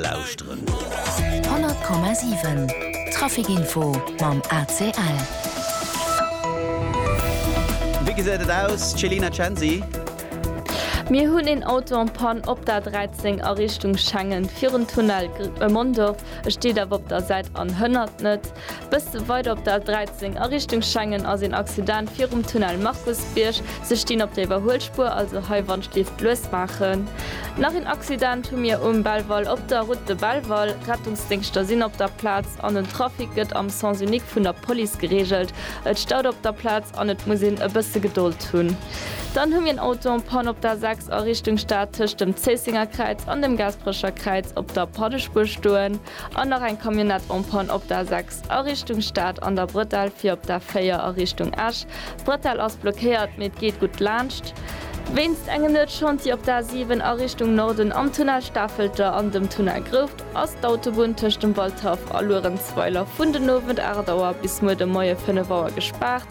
lauschteren. 100,7 Trafic Info mam ACL. Wéi gesäit et aus, Céline Censi? Mir hunn een Auto en panne op der 13 a Richtung Schengen, virun Tunnel Mondorf. E steet awer op der Säit an hënnert net. Bësse weider op der A 13 a Richtung Schengen ass een Accident virum Tunnel Markusbierg. Se stinn op der Iwwerhuelspuer, also hei wannst Lift lues maachen. Nach een Accident hu mir um Belval op der Route de Belval. Rettungsdéngschter sinn op der Plaz an den Trafic gëtt am Sens unique vun der Police gereegelt. Et staut op der Plaz an et muss een e bësse Gedold hunn. Dann hu mir en Auto en panne op der A 6 a Richtung Stad tëscht dem Zéissenger Kräiz an dem Gaasperecher Kräiz op der Paddespuer stoen. An nach eng Camionnette en panne op der 6 a Richtung Stad an der Bretelle fir op der 4 a Richtung Esch. D'Bretelle ass blockéiert, mee et geet gutt laanscht. Wéinst engem Nuetschantier op der 7 a Richtung Norden am Tunnel Stafelter an dem Tunnel Grouft ass d'Autobunn tëscht dem Waldhaff a Luerenzweiler vun den Owend 8 Auer bis muer de Moie 5 Auer gespaart.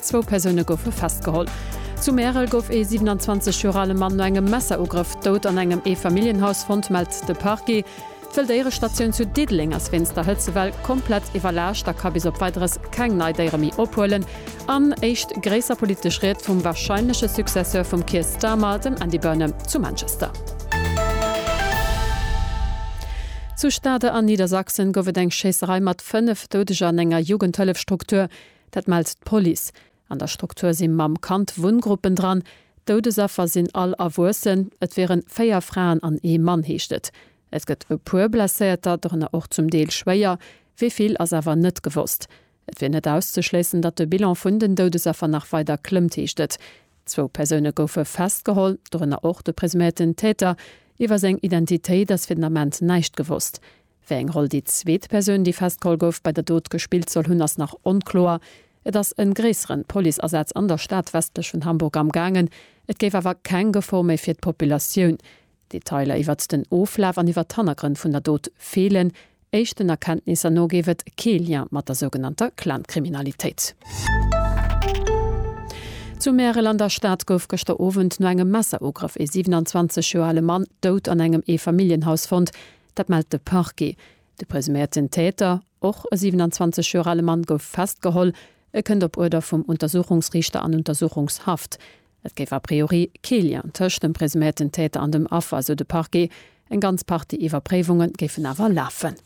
Zwou Persoune goufe festgeholl. Zu Märel gouf ee 27 Joer ale Mann no engem Messerugrëff dout an engem Eefamilljenhaus fonnt, mellt de Parquet. D'Wëlldéierestatioun zu Diddeleng ass wéinst der Hëtzewell komplett iwwerlaascht a ka bis op Weideres keng nei Déiere méi ophuelen. An éischt gréisser politesch Ried vum warscheinleche Successeur vum Keir Starmer, dem Andy Burnham zu Manchester. Zu Stade an Niedersachsen gouf et eng Schéisserei mat 5 Doudeger an enger Jugendhëllefstruktur. Dat mellt d'Police. An der Struktur si mam Kand Wunngruppen dran. D'Doudesaffer sinn all Erwuessen. Et wieren véier Fraen an ee Mann, heescht et. Et gëtt e puer Blesséierter, dorënner och zum Deel schwéier. Wéi vill, ass awer net gewosst. Et wier net auszeschléissen, datt de Bilan vun den Doudesaffer nach weider klëmmt, heescht et. Zwou Persoune goufe festgeholl, dorënner och de presuméierten Täter. Iwwer seng Identitéit ass fir den Ament näischt gewosst. Wéi eng Roll déi zweet Persoun, déi festgeholl gouf, bei der Dot gespillt soll hunn, ass nach onkloer. Et ass e gréisseren Policeasaz an der Stad westlech vun Hamburg amgaangen, et géif awer keng Gefor méi fir d'Populatioun. Detailer iwwert den Oflaf an iwwert d'Hannergrënn vun der Dot feelen. Éischten Erkenntnisser no géif et kee Lien mat der sougenannter Clan-Kriminalitéit. Zu Märel an der Stad gouf gëschter Owend no engem Messerugrëff ee 27 Joer ale Mann dout an engem Eefamilljenhaus fonnt. Dat mellt de Parquet. De presuméierten Täter, och e 27 Joer ale Mann, gouf festgeholl. E kënnt op Uerder vum Untersuchungsriichter an Untersuchungshaft. Et géif a priori kee Lien tëscht dem presuméierten Täter an dem Affer, sou de Parquet. Eng ganz Partie Iwwerpréiwunge géifen awer lafen.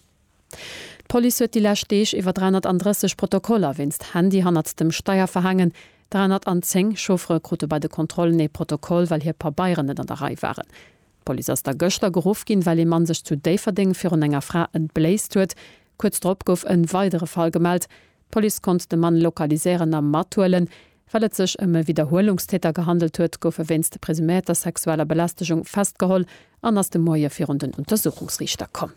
D'Police huet déi lescht Deeg iwwer 330 Protokoller wéinst Handy hannert dem Steier verhaangen. 310 Chauffere krute bei de Kontrollen ee Protokoll, well hir Pabeieren net an der Rei waren. D'Police ass da gëschter geruff ginn, well ee Mann sech zu Déifferdeng virun enger Fra entbléist huet. Kuerz drop gouf e weidere Fall gemellt. D'Police konnt de Mann lokaliséieren a mathuelen. Well et sech ëm e Widderhuelungstäter gehandelt huet, gouf e wéinst presuméierter sexueller Belästegung festgeholl an ass de Moie virun den Untersuchungsriichter komm.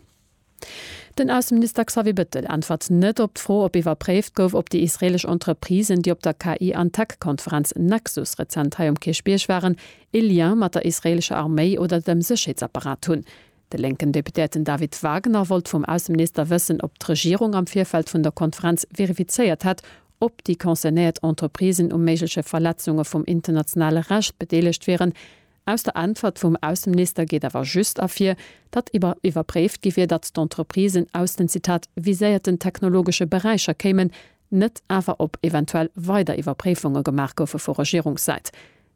Den Ausseminister Xavier Bettel äntwert net op d'Fro, ob iwwerpréift gouf, ob déi israeelesch Entreprisen, déi op der KI an Tech-Konferenz Nexus rezent hei um Kierchbierg waren, ee Lien mat der israeelescher Arméi oder dem Sécherheetsapparat hunn. De lénken Deputéierten David Wagner wollt vum Ausseminister wëssen, ob d'Regierung am Virfeld vun der Konferenz verifizéiert hätt, ob déi concernéiert Entreprisen u méigleche Verletzunge vum internationale Recht bedeelegt wieren, Aus der Äntwert vum Ausseminister geet awer just ervir, datt iwwer iwwerpréift gi wier, datt d'Entreprisen aus den, Zitat, viséierten technologesche Beräicher kéimen, net awer ob eventuell weider Iwwerpréifunge gemaach goufe vu Regierungssäit.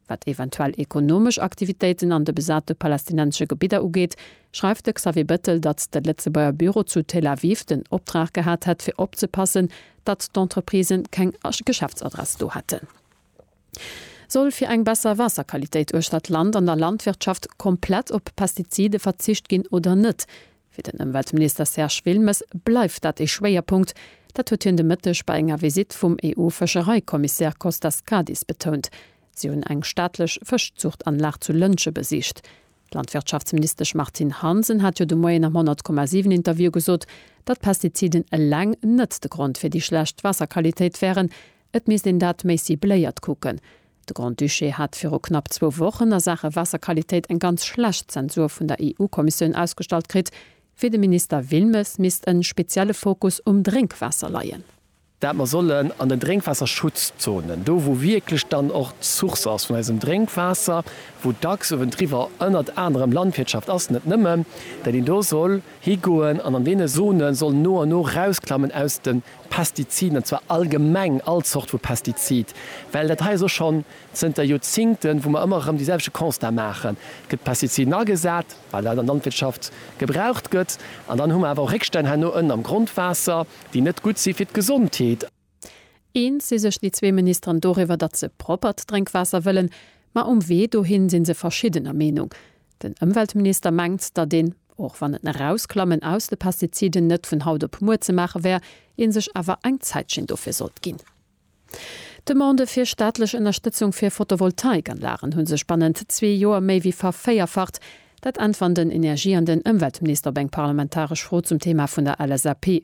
Wat eventuell ekonomesch Aktivitéiten an de besate palästinensesche Gebidder ugeet, schreift de Xavier Bettel, datt de Lëtzebuerger Büro zu Tel Aviv den Optrag gehat hätt fir opzepassen, datt d'Entreprisen keng Geschäftsadress do hätten. Soll fir eng besser Waasserqualitéit uechter d'Land an der Landwirtschaft komplett op Pestizide verzicht ginn oder net? Fir den Ëmweltminister Serge Wilmes bleift dat ee Schwéierpunkt. Dat huet hien de Mëtteg bei enger Visitt vum EU-Fëschereikommissär Kostas Kadis betount. Si hunn eng staatlech Fëschzuchtanlag zu Lëntge besicht. D'Landwirtschaftsministesch Martine Hansen hat jo de Moien am 100,7 Interview gesot, datt Pestiziden eleng net de Grond fir déi schlecht Waasserqualitéit wären, Et misst een dat méi cibléiert kucken. De Grand-Duché hat viru knapp zwou Wochen a Saache Waasserqualitéit eng ganz schlecht Zensur vun der EU-Kommissioun ausgestallt kritt. Fir de Minister Wilmes misst en spezielle Fokus um Drénkwaasser leien. Dat mer sollen an den Drénkwaasserschutzzonen, do wou wierklech dann och d'Source ass vun eisem Drénkwaasser, wou dacks uewendriwwer ënnert anerem Landwirtschaft ass, net nëmmen, dat een do soll higoen an an deene Zone soll no an no rausklammen aus de Pestiziden, an zwar allgemeng all Zort vu Pestizid, well dat hei ass och schonn zënter Joerzingten, wou mer ëmmer erëm dee selwechte Constat maachen, Et gëtt Pestiziden agesat, well dat an der Landwirtschaft gebraucht gëtt, an dann hu mer awer och Réckstänn herno ënnen am Grondwaasser, déi net gutt si fir d'Gesondheet. Eens si sech déi zwee Ministeren doriwwer, datt se proppert Drénkwaasser wëllen, ma um Wee dohin si se verschiddener Meenung. Den Ëmweltminister mengt, datt een, och wann en Erausklammen aus de Pestiziden net vun haut op muer ze maache wär, ee sech awer eng Zäitchen dofir sollt ginn. D'Demandë fir staatlech Ënnerstëtzung fir Photovoltaikanlagen hu sech bannent zwee Joer méi wéi vervéierfacht. Dat äntweren den Energie an den Ëmweltminister op eng parlamentaresch Fro zum Theema vun der LSAP.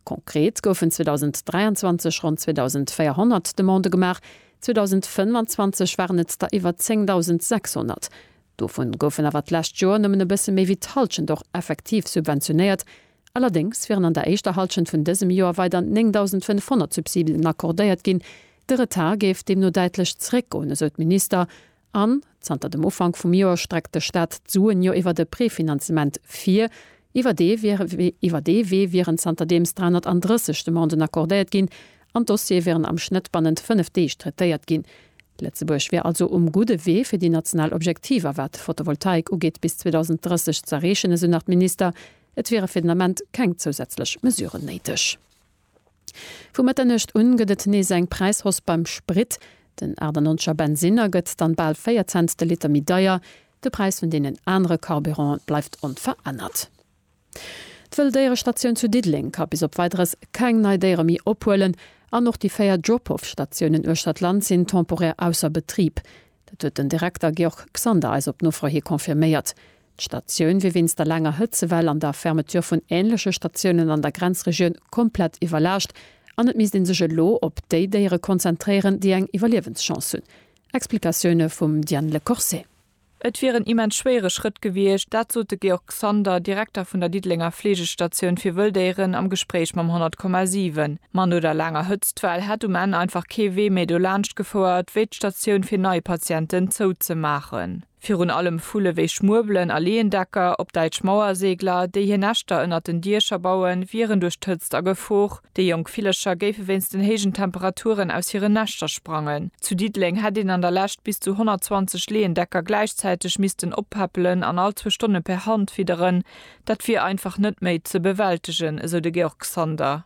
Konkret goufen 2023 ronn 2.400 Demandë gemaach, 2025 waren et der iwwer 10.600. Dovun goufen awer d'lescht Joer nëmmen e bësse méi wéi d'Hallschent och effektiv subventionéiert. Allerdéngs wieren an der éischter Hallschent vun dësem Joer weider 9.500 Subsiden accordéiert ginn. De Retard géif deemno däitlech zeréckgoen, esou d'Minister An zanter dem Ufank vum Joer streckt de Staat d'Suen jo iwwert e Prefinanzement vir. Iwwer dee iwwer dee Wee wieren zanterdeems 330 Demanden accordéiert ginn an d'Dossiere wieren am Schnëtt bannent fënnef Deeg traitéiert ginn. Lëtzebuerg wier also um gudde Wee fir déi national Objektiver wat d'Fotovoltaik ugeet bis 2030 ze erreechen, esou nach d'Minister. Et wiere fir den Ament keng zousätzlech Mesuren néideg. Vu Mëtternuecht un gëtt et nees eng Präishoss beim Sprit. Den 98er Bensiner gëtt dann bal 4 Cent de Liter méi deier. De Präis vun deenen anere Carburanten bleift onverännert. D'Wëlldéierestatioun zu Diddeleng ka bis op Weideres keng nei Déiere méi ophuelen an och déi 4 Drop-Off-Statiounen uechter d'Land sinn temporär ausser Betrib. Dat huet den Direkter Georg Xander eis op Nofro hi confirméiert. D'Statioun wier wéinst der laanger Hëtzewell an der Fermeture vun änleche Statiounen an der Grenzregioun komplett iwwerlaascht an et misst ee sech elo op déi Déiere konzentréieren, déi eng Iwwerliewenschance hunn. Explikatioune vum Diane Le Corset. Et wier en immens schwéiere Schrëtt gewiescht, dat sot de Georg Xander, Direkter vun der Diddelenger Fleegestatioun fir Wëlldéieren am Gespréich mam 100,7. Ma no der laanger Hëtztwell hätt um Enn einfach kee Wee méi dolaanscht gefouert, wéi d'Statioun fir nei Patienten zouzemaachen. Virun allem Vulle wéi Schmuebelen a Leendecker, op Däitsch Mauerseegler, déi hir Näschter ënnert den Diecher bauen, wieren duerch d'Hëtzt a Gefor. Déi jonk Villercher géife wéinst den héijen Temperaturen aus hiren Näschter sprangen. Zu Diddeleng hätt een an der Lescht bis zu 120 Leendecker gläichzäiteg missten oppäppelen an all zwou Stonne per Hand fidderen. Dat wier einfach net méi ze bewältegen, esou de Georg Sander.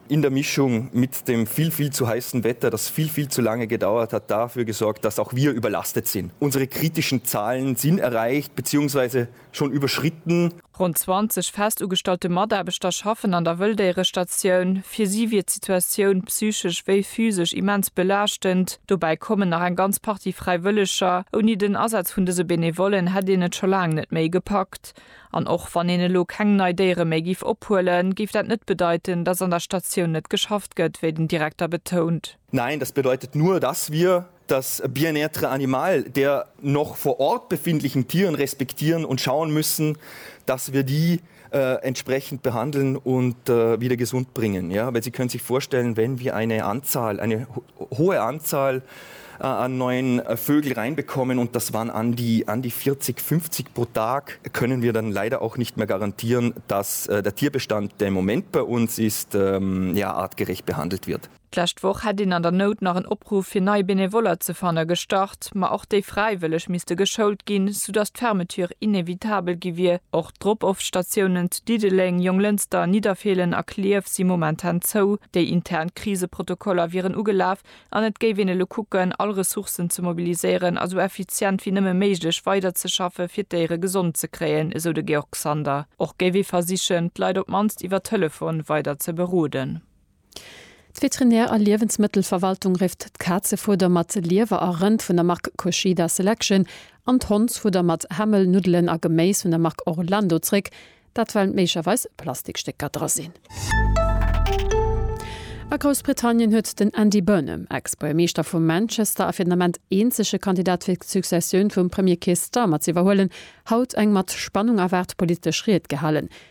In der Mischung mit dem viel, viel zu heissen Wetter, das viel, viel zu lange gedauert hat, dafür gesorgt, dass auch wir überlastet sind. Unsere kritischen Zahlen sind erreicht beziehungsweise schon überschritten. Ronn 20 fest ugestallte Mataarbechter schaffen an der Wëlldéierestatioun. Fir si wier d'Situatioun psychesch wéi physesch immens belaaschtend. Dobäi kommen nach eng ganz Partie Fräiwëlleger. Ouni den Asaz vun dëse Benevollen hätt een et scho laang net méi gepackt. An och wann een elo keng nei Déiere méi giff ophuelen, géif dat net bedeiten, dass an der Statioun net geschafft gëtt, wéi den Direkter betount. Nein, das bedeutet nur, dass wir das Bien-être animal der noch vor Ort befindlichen Tieren respektieren und schauen müssen, dass wir die entsprechend behandeln und wieder gesund bringen. Ja, weil Sie können sich vorstellen, wenn wir eine Anzahl, eine Hohe Anzahl an neuen Vögel reinbekommen und das waren an die an die 40, 50 pro Tag, können wir dann leider auch nicht mehr garantieren, dass der Tierbestand, der im Moment bei uns ist, ja artgerecht behandelt wird. D'lescht Woch hätt een an der Nout nach en Opruff fir nei Benevoller ze fanne gestart, ma och déi fräiwëlleg misste geschoult ginn, soudass d'Fermeture inevitabel gi wier. D'Drop-off-Statiounen zu Diddeleng, Jonglënster, Nidderfeelen a Klierf si momentan zou. Déi intern Kriseprotokoller wieren ugelaf an et géif een elo kucken, all Ressourcen ze mobiliséieren a sou effizient wéi nëmme méiglech weiderzeschaffe fir d'Déiere gesond ze kréien, esou de Georg Sander. Och géif ee versichen, d'Leit op d'mannst iwwer Telefon weider ze beroden. D'Veterinär a Liewensmëttelverwaltung rifft d'Kazefueder mat Liewer a Rënd vun der Mark Kushida Selection an d'Hondsfudder mat Hämmel, Nuddelen a Geméis vun der Mark Orlando zréck, dat well méiglecherweis Plastikstécker dra sinn. A Groussbritannien huet den Andy Burnham, Ex-Buergermeeschter vu Manchester a fir den Ament eenzege Kandidat fir d'Successioun vum Premier Keir Starmer z'iwwerhuelen, haut eng mat Spannung erwaart politesch Ried gehalen.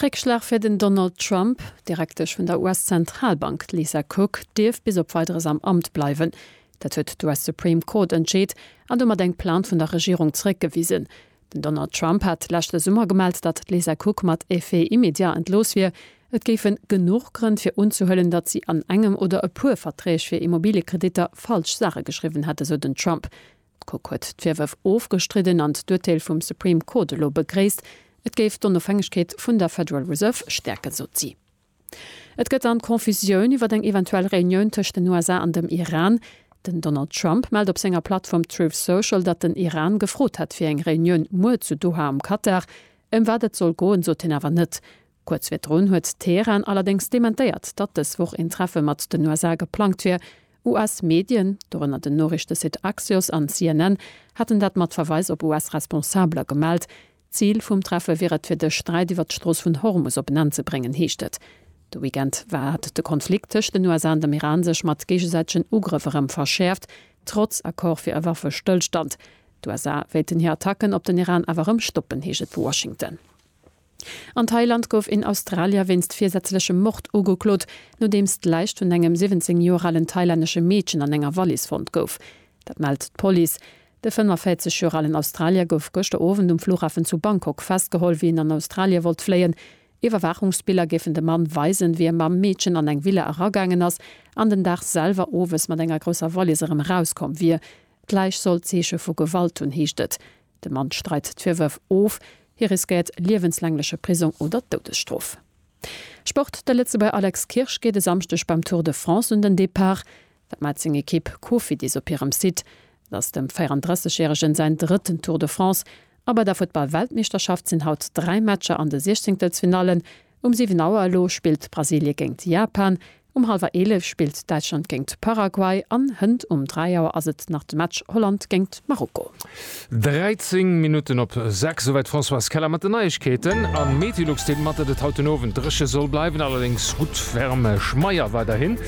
Réckschlag fir den Donald Trump, D'Direktesch vun der US-Zentralbank, d'Lisa Cook, dierf bis op Weideres am Amt bleiwen. Dat huet d'US Supreme Court entscheet an domat eng Plainte vun der Regierung zeréckgewisen. Den Donald Trump hat leschte Summer gemellt, datt d'Lisa Cook mat effet immédiat entlooss wier. Et géifen genuch Grënn fir unzehuelen, datt si an engem oder e puer Verträg fir Immobiliekreditter falsch Saache geschriwwen hätt, esou den Trump. D'Court huet d'Virwërf ofgestridden an d'Urteel vum Supreme Court elo begréisst. Et géif d'Onofhängegkeet vun der Federal Reserve stäerken, sot si. Et gëtt dann Confusioun iwwer eng eventuell Reunioun tëscht den USA an dem Iran. Den Donald Trump mellt op senger Plattform Truth Social, datt den Iran gefrot hätt fir eng Reunioun muer zu Doha am Katar. Ëm wat et soll goen, sot hien awer net. Kuerz virdrun huet Teheran allerdéngs dementéiert, datt dës Woch een Treffe mat den USA geplangt wier. US-Medien, dorënner den Noriichtesite Axios an CNN, haten dat mat Verweis op US-Responsabeler gemellt. Zil vum Treffe wier et, fir de Sträit iwwer d'Strooss vun Hormus op en Enn ze bréngen, heescht et. De Weekend war hat de Konflikt tëscht den USA an dem Iran sech mat géigesäitegen Ugrëff erëm verschäerft, trotz Accord fir e Waffestëllstand. D'USA wéilten hir Attacken op den Iran awer erëm stoppen, heescht et vu Washington. An Thailand gouf een Australier wéinst virsätzlechem Mord ugeklot, nodeems d'Läich vun engem 17 Joer alen thailännesche Meedchen an enger Wallis fonnt gouf. Dat mellt d'Police. De 45 Joer alen Australier gouf gëschter Owend um Flughafen zu Bangkok festgeholl, wéi en an Australie wollt fléien. Iwwerwaachungsbiller géifen de Mann weisen, wéi e mam Meedchen an eng Villa eragaangen ass an den Dag selwer owes mat enger grousser Wallis erëm erauskomm wier. D'Läich soll Zeeche vu Gewalt hunn, heescht et. De Mann streit d'Virwërf of. Hie riskéiert liewenslängleche Prisong oder d'Doudesstrof. Sport, De Lëtzebuerger Alex Kirsch geet e Samschdeg beim Tour de France un den Depart. Wat mellt seng Ekipp Cofidis op hirem Site? Et ass dem 34 järegen säin drëtten Tour de France. A bei der Futtball-Weltmeeschterschaft sinn haut dräi Matcher an de Siechzéngtelsfinallen. Um 7 Auer elo spillt Brasilie géint Japan. Um halwer 11 spillt Däitschland géingt Paraguay an hënt um 3 Auer ass et nach de Match Holland géingt Marokko. 13 Minutten op 6, esouwäit d'Françoise Keller mat den Neiegkeeten. A Metilux deelt mat, datt et haut den Owend dréche soll bleiwen, allerdéngs gutt Wärme schmeier weiderhin.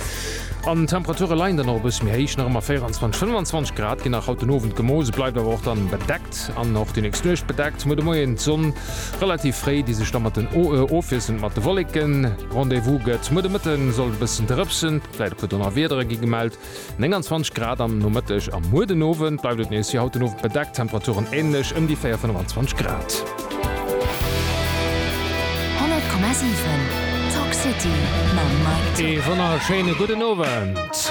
An d'Temperature leien dann och e bësse méi héich, nach ëmmer 24, 25 Grad ginn nach haut den Owend gemooss, et bleift awer och dann bedeckt. Nuet an och déi nächst Nuecht bedeckt, muer de Moien d'Sonn relativ fréi, déi sech da mat den Oae ofwiesselt mat de Wolleken. Rendez-vous gëtt muer de Mëtte, sollt e bëssen drëpsen, vläit e puer Donnerwiedere gi gemellt, 29 Grad am Nomëtteg a muer den Owend bleift et nees wéi haut den Owend bedeckt, Temperaturen änlech ëm déi 4, 25 Grad. 100,7 Talk City mam Mike Thill. Ee wonnerschéine gudden Owend.